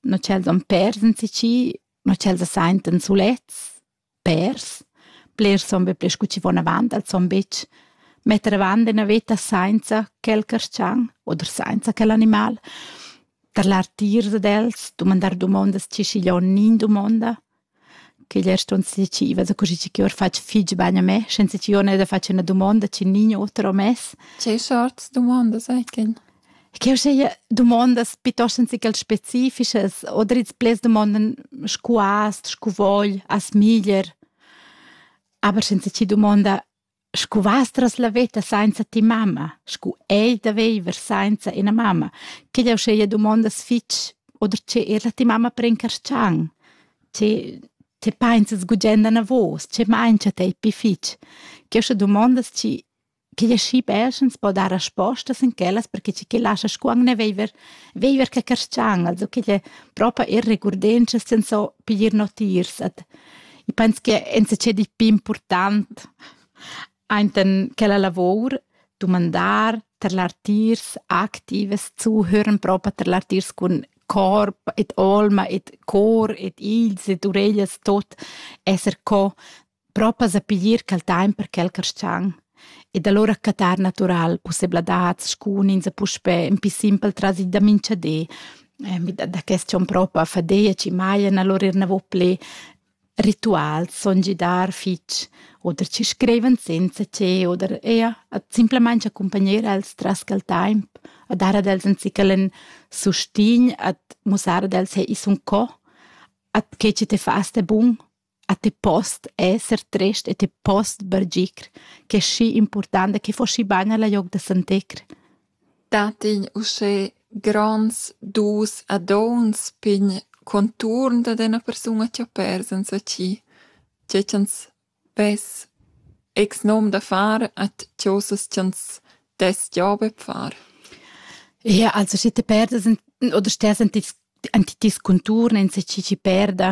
no ch'els han pers enzì chi, no ch'els as saintan sulets, pers. Blers son be pli scu chi von avant, els son betg metter avant üna veta sainza quel carschan oder sainza quel animal. Tarlar tiers ad els, dumandar dumondas chi schiglio'n nin dumonda. Ch'igl è ston decida da cuschi chi or fatg fich bagn a me, senza chi ona da fatg üna dumonda chi nign oter ho mess. Che sorts dumondas ei quel? Ch'eu seia dumondas piitost senza ch'els specifichas oder ils pleds dumondan scu hast, scu vogl, as miglier, aber senza chi dumonda Scu vastras la veta sainza ti mamma, scu ei da viver sainza ina mamma, chi'd eu schea dumondas fich oder che er ti mamma prencarschan, che che painzas gugent anavos, che maincha tei pi fich, ch'eu scha dumondas chi chi ella schi perschens po dar respostas in quellas perche chi chi lascha scu angne viver viver che carschan, also ch'ella propa irregurdientschas senza piglier notiers ad Ich penso che enzatgé di più important ainten quella lavor dumandar tar l'artiers activas zuhören propa tar l'artiers cun corp et alma et cor et ils et ureglias tot esser co propa sa piglier quel time per quel carschang ed alura cattar natural pussebladats scunins e puspè ün pi simpel trasi da minchadi. Da, da quest jon propa fadia chi majan alura eir navo plü rituals, son gidar fich oder chi scrivan senza che oder eir simplamaing accumpagnar els tras quel taimp, a dar ad els ün zichel ün sustign, a mussar ad els hey, i sun co, at che chi te fast è bun A ti post esser trist e ti post bargir, ch'è schi impurtanta che fo schi bagn alla gliop da santecr. Dat igl uschè gronds dus a donns pign conturn dad ena persuna chi ho pers enzatgi, tge ch'ans vess ex nom da far at chosas ch'ans dess gia be far. Ja, also schi ti perdas oder stess an ti disconturn enzatgi chi perda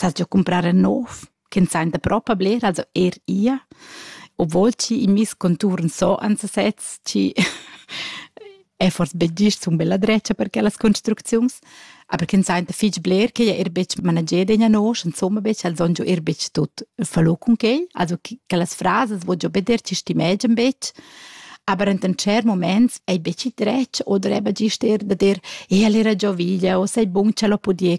sas giò cumprar ün nouv ch'ün sainta propa bler, also eir ia. Obwohl chi in meis contuorn so ans sez chi è forse be gist sun be la drezcha per quellas construcziuns, aber ch'ün sainta fich bler ch'el è eir betg manager d'egna nosch, insomma be ch'el son giò eir betg tut falò cun quel. Also quellas frasas voul giò be dir chi stimegian betg, aber enten tschert moments ei betg dretg o dreva gist er da dir, e el era già veglia o sei bun, ch'el ho pudì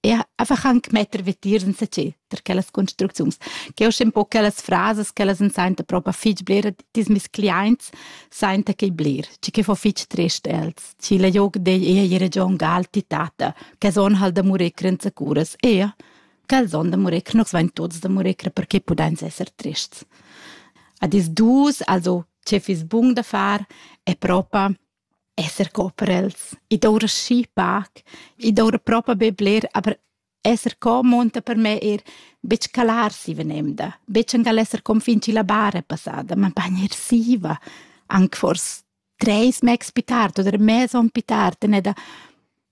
e einfach anche metter vetier in sacé per quellas construcziuns che ho un po quellas frases che las senta proprio fitch bler dis mis clients senta che bler ci che fo fitch trist els ci la jog de ei region gal titata che son hal da murecr in sacuras e che son da murecr nos vain tots da murecr perché pudains esser trists a dis dus also ce fis bun da far è proprio esser co per els. I doura schi pac, i doura propa be bler, aber esser co monta per me er betg calar si venemda, betg angal esser com fin ci la bara passada, ma bagn er siva, anc fors treis megs pi tard oder mez on pi tard en eda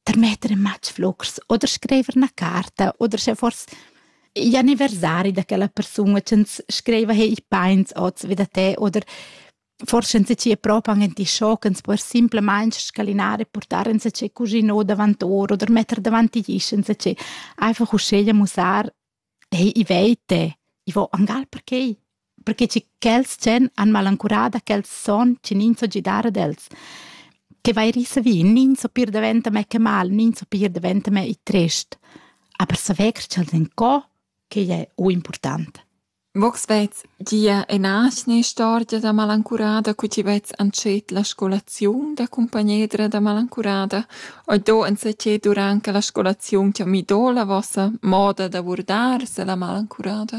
termetter in matg flucrs oder screiver na carta oder sche fors gli anniversari da quella persun e ch'ns screiva hey i pains oz vi da te oder forse enzatgei propa han enti schochens per simplamain scalinare e portar enzatgei cuginot davant or oder metter davant igl isch enzatgei einfach uscheglia musar ei i veite i vo angal perquei perché ci quels chen han malancurada quels son ci nin so gidar ad els che vai risa vi nin so pir daventa me che mal nin so pir daventa me i trest aber saver ch'els en co che è o important Vos vezs gia ena atgna istorgia da malancurada cu ti vez antschet la scolaziun da cumpagnedra da malancurada? Oi do enzatgei durant che la scolaziun ti ha mido la vossa moda da vurdar se la malancurada?